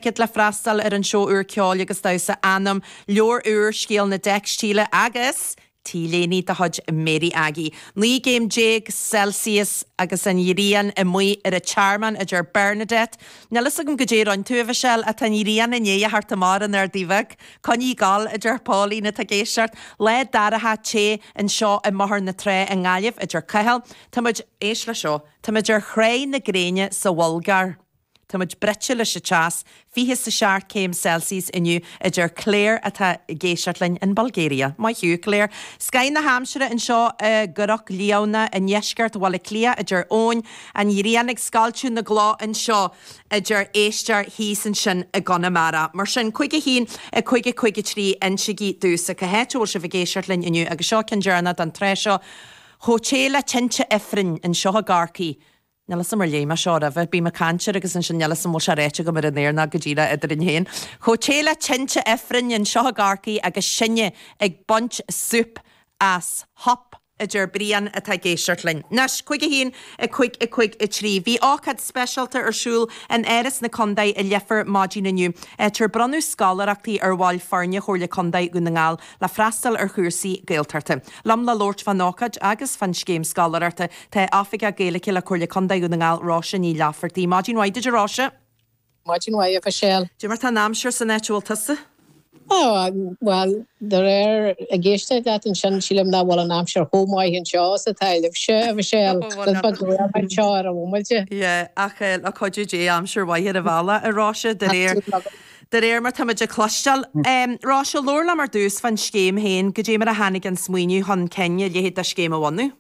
Ticket le freastal ar an seó úr ceoil agus damhsa Anam, leabhar úr, Scéal na dTeicstíle, agus T-léine de chuid Mary Aggie. 19 gcéim Celsius agus an ghrian amuigh ar an Tearmann, a deir Bernadette. Níl a fhios agam goidé a rinne tú, a Mhichelle, ach tá an ghrian i ndiaidh a theacht amach ar an Ardaidh Bheag. Coinnigh ag gabháil, a deir Pauline, atá ag éisteacht. Lá dorcha te anseo i mBóthar na Trá i nGaillimh, a deir Cathal. Táimid, éist leis seo, táimid ar Thrá na Gréine sa Bhulgáir. Táimid bruite leis an teas, 20 is a seacht céim Celsius inniu, a deir Clare atá ag éisteacht linn in Bulgaria. Maith thú, Clare. Scoth na haimsire anseo i gCnoc Liamhna i ndeisceart Bhaile Átha Cliath, a deir Eoin. An ghrian ag scoilteadh na gcloch anseo, a deir Esther thíos ansin i gConamara. Mar sin, 51553, insigí domhsa cá háit a bhfuil sibh ag éisteacht linn inniu agus seo ceann deireanach don tráth seo chomh te le tinte ifrinn anseo i gCorcaigh. Níl 'fhios a'm ar léigh mé seo roimhe. Bím ag caint air agus ansin níl 'fhios a'm bhfuil sé ráite agam ar an aer nó go díreach eadrainn féin. Chomh te le tinte ifrinn anseo i gCorcaigh agus sinne ag baint súp as Hup! a deir Brian atá ag éisteacht linn. Anois, cúig a haon, a cúig, a cúig, a trí. Bhí ócáid speisialta ar siúl in Áras na Contae i Leifear maidin inniu, áit ar bronnadh scoláireachtaí ar bhaill foirne Chomhairle Contae Dhún na nGall, le freastal ar chúrsaí Gaeltachta. Liom le labhairt fán ócáid agus fán scéim scoláireachta tá Oifigeach Gaeilge le Comhairle Contae Dhún na nGall, Róise Ní Laifeartaigh. Maidin mhaith duit, a Róise. Maidin mhaith, a Mhichelle. Goidé mar atá an aimsir san áit a bhfuil tusa? Bhuel, díreach ag éisteacht leat ansin sílim nach bhfuil an aimsir chomh maith anseo is atá libhse, a Mhichelle. Shílfeá go raibh anseo ar an bhomaite. Yeah, ach le cuidiú Dé, aimsir mhaith ar an bhealach, a Róise, de réir. De réir mar táimid ag cloisteáil, Róise, labhair liom ar dtús fán scéim féin, goidé mar a tháinig an smaoineamh chun cinn a leithéid de scéim a bhunú.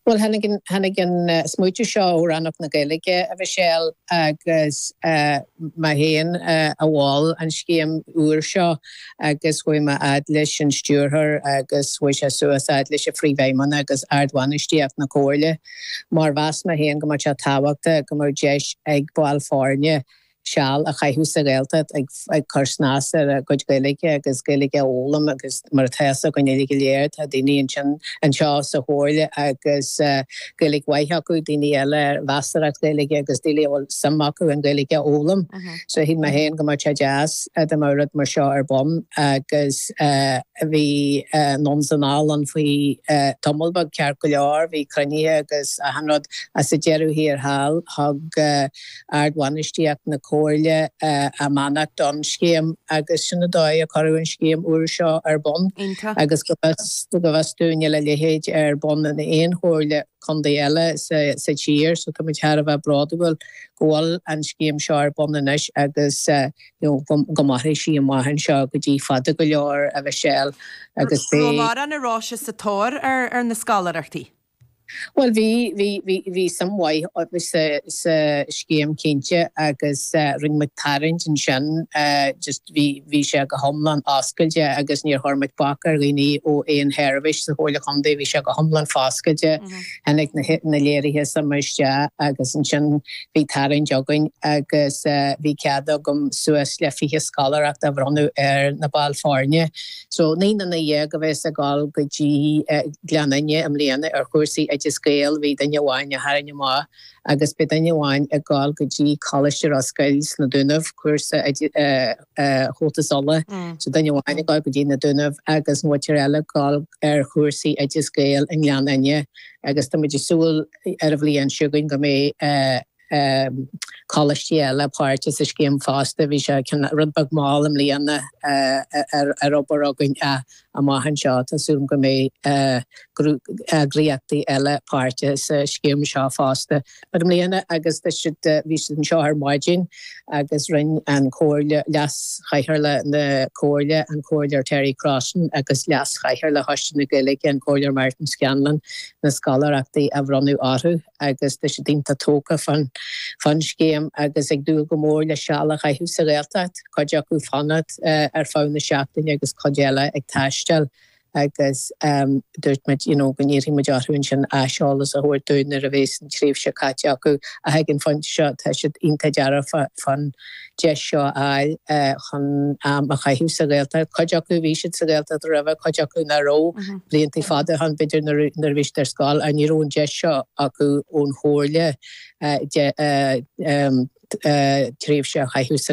Bhuel, tháinig an smaoiteamh seo ó Rannóg na Gaeilge, a Mhichelle, agus mé féin a mhol an scéim úr seo agus chuaigh mé fhad leis an stiúrthóir agus chuaigh sé suas fhad leis an Phríomhfheidhmeannach agus ardbhainistíocht na Comhairle mar mheas mé féin go mbeadh sé tábhachtach go mbeadh deis ag baill foirne seal a chaitheamh sa Ghaeltacht ag cur snas ar a gcuid Gaeilge agus Gaeilge a fhoghlaim agus mar atá a fhios againn uilig go léir tá daoine ansin anseo sa Chomhairle agus Gaeilge mhaith acu, daoine eile ar mheasarthacht Gaeilge agus daoine a bhfuil suim acu an Ghaeilge a fhoghlaim so shíl mé féin go mbeadh sé deas dá mbeadh rud mar seo ar bun agus bhí anonn is anall ann faoi tamall beag ceart go leor, bhí cruinnithe agus achan rud ach sa deireadh thiar thall thug. ardbhainistíocht na Comhairle a mbeannacht don scéim agus sin an dóigh a cuireadh an scéim úr seo ar bun agus go bhfios dúinn níl a leithéid ar bun in aon Chomhairle Contae eile sa tír so táimid thar a bheith bródúil go bhfuil an scéim seo ar bun anois agus go mairfidh sí amach anseo go cionn fada go leor a Mhichelle agus beidh an-ráchairt sa tóir ar na scoláireachtaí. Bhuel, bhí, bhí, bhí, bhí suim mhaith againn sa, sa scéim cinnte agus rinne muid tarraingt ansin just, bhí, bhí sé go hiomlán oscailte agus níor chuir muid bac ar dhaoine ó aon sheirbhís sa Chomhairle Contae, bhí sé go hiomlán foscailte, tháinig na, na léirithe suime isteach agus ansin bhí tarraingt againn agus bhí cead agam suas le fiche scoláireacht a bhronnadh ar na baill foirne. So, naoi nduine déag a bheas ag dul go dtí Gleann Fhinne i mbliana ar chúrsaí Oideas Gael, bhí duine amháin a tharraing amach agus beidh duine amháin ag dul go dtí Coláiste Ros Goill sna Dúnaibh, cúrsa Chomhaltas Uladh. So duine amháin ag dul go dtí na Dúnaibh agus an mhuintir eile ag dul ar chúrsaí Oideas Gael i nGleann Fhinne agus tá muid ag súil ar an bhliain seo chugainn go mbeidh, coláistí eile páirteach sa scéim fosta. Bhí sé rud beag mall i mbliana ag obair againn ach amach anseo tá súil agam go mbeidh eagraíochtaí eile páirteach sa scéim seo fosta. I mbliana agus bhí siad anseo ar maidin agus rinne an Chomhairle, leaschathaoirleach na Comhairle, an Comhairleoir Terry Crossan agus leaschathaoirleach Choiste na Gaeilge, an Comhairleoir Martin Scanlon, na scoláireachtaí a bhronnadh orthu. agus tá siad iontach tógtha fán scéim agus ag dúil go mór le seal a chaitheamh sa Ghaeltacht, cuid acu fanacht ar feadh na seachtaine agus cuid eile ag taisteal agus dúirt muid you know go n-iarrfaidh muid orthu ansin aiseolas a thabhairt dúinn nuair a bhéas an tréimhse caite acu ach ag an phointe seo tá siad iontach dearfach fán deis seo a fháil chun am a chaitheamh sa Ghaeltacht. Cuid acu, bhí siad sa Ghaeltacht roimhe, cuid acu nach raibh, blianta fada ó shin b'fhéidir nuair a bhí siad ar scoil, ach ní raibh an deis seo acu ón Chomhairle tréimhse a chaitheamh sa.